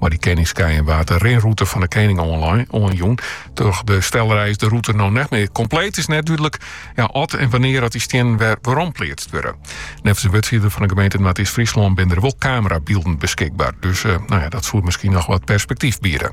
Mei dy keningskeien waard de rinrûte fan de kening oanjûn. Troch de stellerij is de rûte no net mear kompleet. Is net dúdlik oft en wannear't dy stiennen werompleatst wurde. Neffens in wurdfierder fan de gemeente Noardeast-Fryslân binne der wol kamerabylden beskikber. Dus dat soe miskien noch wat perspektyf biede.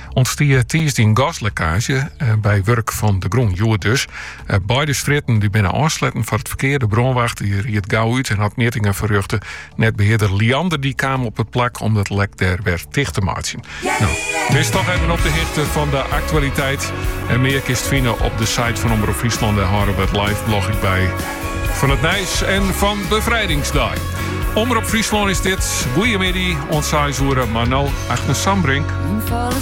Ûntstie tiisdei in gaslekkaazje by wurk yn de grûn. Hjoed dus. Beide strjitten die binne ôfsletten foar it ferkear. De brânwacht die ried gau út en hat mjittingen ferrjochte. Netbehearder Liander die kaam op it plak om it lek dêr wer ticht te meitsjen. No, bist toch even op de hichte fan de aktualiteit. En mear kinst fine op de site fan Omrop Fryslân. Dêr hâlde we it live blog ek by fan it nijs en fan Befrijdingsdei. Omrop Fryslân is dit. Goeiemiddei, oant seis oere, mei no Agnes Sambrink.